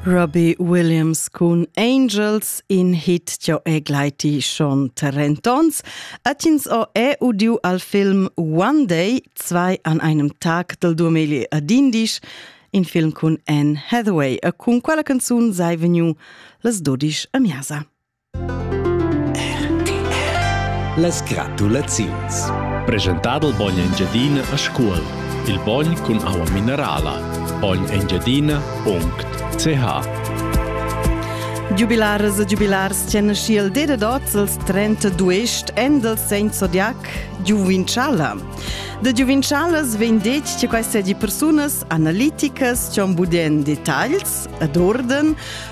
Robbie Williams cun Angels in hit jo e gleiti schon Tarentons atins o è udiu al film One Day zwei an einem Tag del Duameli a Dindish in film cun Anne Hathaway e cun quella canzun sei vegniu las 12 a miasa. Las gratulaziuns. Preschentà dal bogn Engiadina a Scuol. Il bogn cun aua minerala. bognengiadina.ch Giubilaras e giubilars tien naschiel ded ots als 32 en del segn zodiac Giuvinchala. Da Giuvinchalas vegn detg che queste di persunas analiticas cion budien detagls ed orden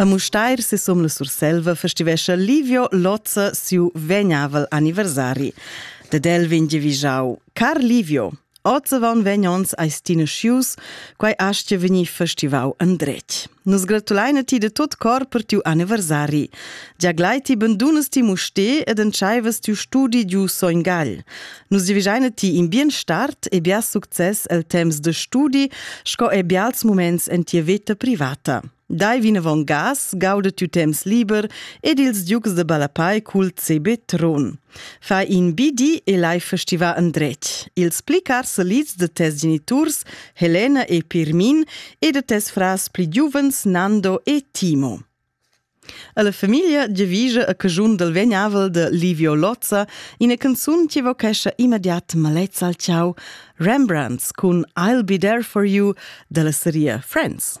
A Mustair se som la Surselva festivescha Livio Lozza siu vegnavel anniversari. Dad el vegn giavischau Car Livio, Ozzavon vegnons eis ti nascius, quai astga vegnir festivau andretg. Nus gratulein ti de tot cor per tiu anniversari. Gia glai ti bandunas ti muste ed entscheivas tiu studi giu Soingal. Nus divigiaine ti in bien start e bia success el temps de studi sco e bials moments en tia veta privata. Dai vinavon gas, gauda tu temps liber ed ils ducs de Balapai cul CB Tron. Fa in BD e lai festiva andret. Ils pli car selids de tes geniturs, Helena e Pirmin, e de tes frars pli giuvens Nando e Timo. Alla famiglia giavischa a caschun dal vegnavel de Livio Lozza ina canzun che vochescha immediat malezza al ciao, Rembrandts cun I'll be there for you dalla seria Friends.